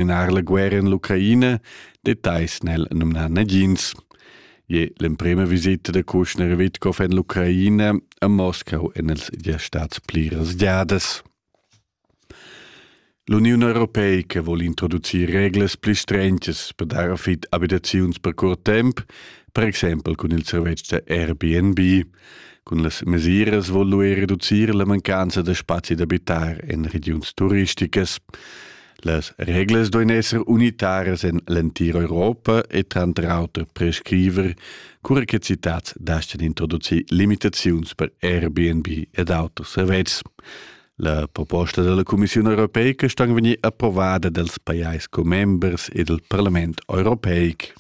Minar la guerra in l'Ucraina, detais nel numnar nagins. Je l'emprema visita de Kushner Witkov en l'Ucraina a Moscau en els dia stats pli rasgiadas. L'Union Europeica vuol introducir reglas pli strentges per dar fit abitaziuns per curt temp, per exempel cun il servetsch da Airbnb. Cun las mesiras vuol lui reducir la mancanza da spazi d'abitar en regions turisticas. Las reglas duein esser unitaras en l'entira Europa e tranter auter prescriver, cura che citats dastan introducir limitaziuns per Airbnb ed auters servetschs. La proposta della Commissione europeica sta vegnir approvada dals pajais commembers e del Parlament europeic.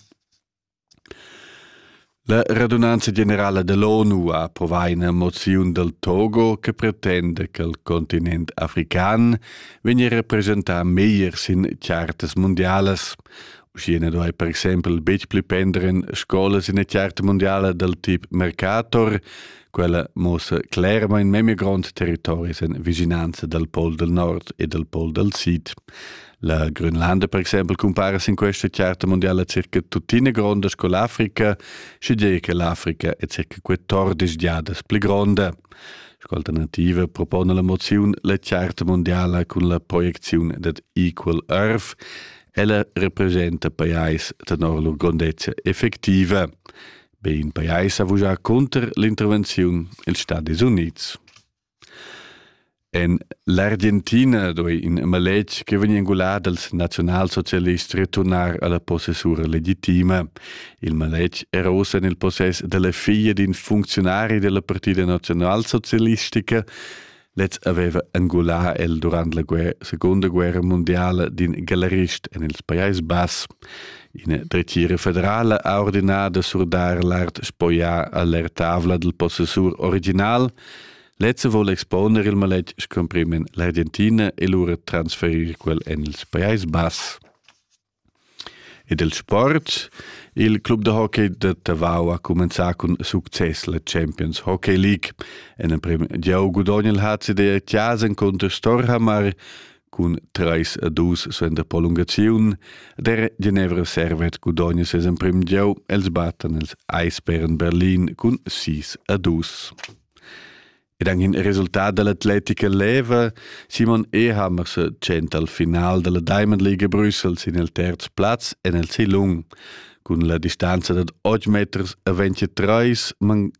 La radunanza generala dall'ONU ha approvà ina moziun dal Togo che pretenda che il continent african vegnia representà meglier sin chartas mundialas. Uschia na duai per exempel betg pli pender en scolas ina charta mundiala dal tip Mercator. Quella muossa clermain memia grond territori en vischinanza dal Pol dal Nord e dal Pol dal Sid. La Grönlanda per exempel cumpara sin questa charta mondiala circa tuttina gronda sco l'Africa, sche dire che l'Africa è circa 14 giadas pli gronda. Sco alternativa propone la moziun la charta mondiala cun la proiecziun dad Equal Earth. Ella representa pajais tenor lur grondezza effectiva. Be in pajais ha vujà cunter l'intervenziun ils Stati Units. En l'Argentina duei in maletg che vegn engulà dals naziunalsocialists returnar alla possessura legitima. Il maletg era ussa en il possess dalla figlia d'in funcziunari della Partida Nationalsocialistica. Lez aveva angulà el durant la guerra, seconda guerra mondiala d'in galerist en il Pajais Bass. Ina dretgira federala ha ordinà da surdar l'art spoglià a l'aertavla dal possessur original. Lezza vuol exponer il maletg scumprimen l'Argentina e lura transferir quel en il Pajais Bass. E del sport, il club de hockey de Tavau ha comenzato con succes la Champions Hockey League. En el prim giau gudogna il HCD a Chiasen contro Storhamar, cun treis a dus suenter prolungaziun, der Genevra servet gudogna ses emprim gieu, els batten els Eisbären Berlin cun sis a dus. Ed anche in resultat dell'atletica leva, Simon Ehammer se tschenta al final della Diamond League Brüssels in il terz plaz en el Silung, cun la distanza dad 8 meters a 23, man